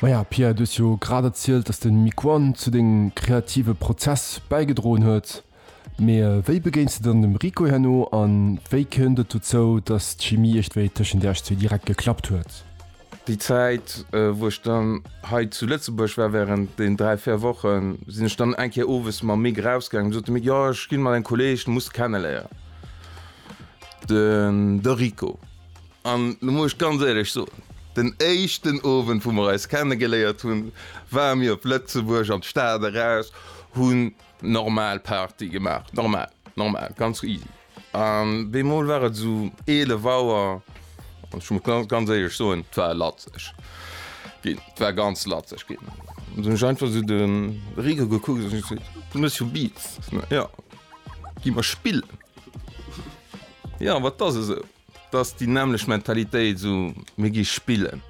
Maja Pierre, du hues jo grad erzielt, dass de Miquon zu dengem kreative Prozess bäigedroen huet. Mee wéi begéins de dann dem Rico herno a wéi kënnt et dozou, dass d'Chimie iergdwéi tëschent iech zwee direkt geklappt huet? Déi Zäit, wou ech dann hei zu Lëtzebuerg war, wärend den dräi, véier Wochen, sinn ech dann eng Kéier owes mam Mick erausgaangen. Du sot de Mick, jo, ech ginn mat engem Kolleeg, den muss de kenneléieren, de Rico. An lo muss ech ganz éierlech soen, den éischten Owend wou mer eis kenne geléiert hunn, ware mir op Lëtzebuerg an d'Stad eraus, hunn normal Party gemaach, normal, normal, ganz easy. An bemol war et esou 11 Auer an ech muss ganz éierlech soen, et war latzeg ginn, et war ganz latzeg ginn. An dunn hunn ech einfach esou de Rico gekuckt an ech gesot, Monsieur Beats, jo, gi mer spillen. Jo, wat ass esou? T'ass déi nämmlecht Mentalitéit, esou mir gi spillen,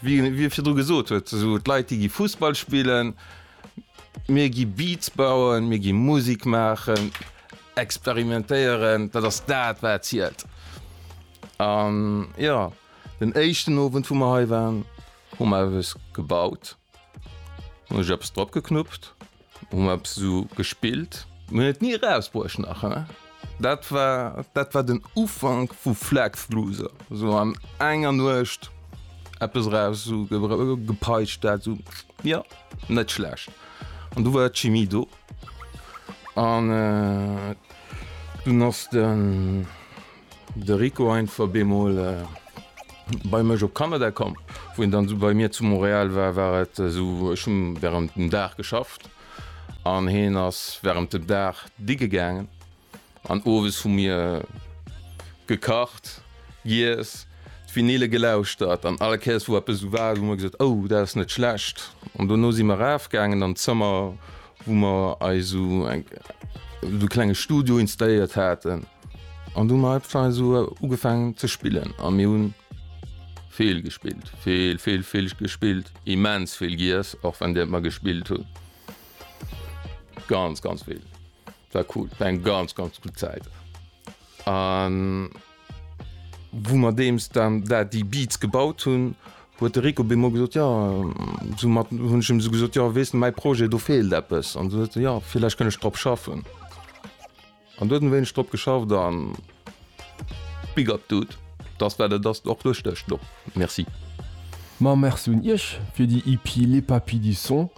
wéi e virdru gesot huet, esou d'Leit déi gi Fussball spillen, mir gi Beats bauen, mir gi Musik maachen, experimentéieren, dat ass dat wat zielt. An jo, den éischten Owend wou mer hei waren, hu mer eppes gebaut. Hun ech eppes drop geknuppt, hun mer eppes esou gespillt. Mir hun et ni erausbruecht nach he. Dat war, dat war den Ufank vu Flexluuser, esou an enger Nuecht eppes eraus esou gepeitscht, dat esou, jo, net schlecht. An du war d'Chimie do, an dunn ass de. De Rico ein ver bemol bei mech op Kanada komm, wou en dann esou bei mir zu Montréal war, war et esou, ech hunn während dem Dag geschafft an heen ass während dem Dag digge gaangen an owes hu mir gekacht, giess, d'Vinyle gelauschtert an all Kéiers wou eppes esou war hu mer gesot, oh dat ass net schlecht an dono si mer raaf gaangen an d'Zëmmer wou mer eis esou eng esou klenge Studio installéiert haten. An du mei Pfei so ugefang ze spillen a mir hunn. Vill gespillt, vill vill vill gespillt, immens vill giess, och wann dir mat mer gespillt hunn. Ganz ganz vill war cool, war eng ganz ganz gutt Zäit an. Wou mer deems dann dat déi Beats gebaut hunn, huet de Rico bemol gesot, jo soumat hunn ech em esou gesot, jo weess de mäi Projet do feelt eppes an esou huet se jo villäicht kënn ech drop schaffen. An do huet en e wéineg drop geschafft a big up dude, dass wat et ass och duerchstécht elo. Merci. Ma Merci un Iech fir déi EP Les Papis du Son.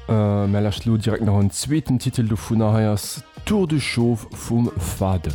Mär lauschteren elo direkt nach en zweeten Titel dovunner, hei ass Tour de Chauve vum Fade.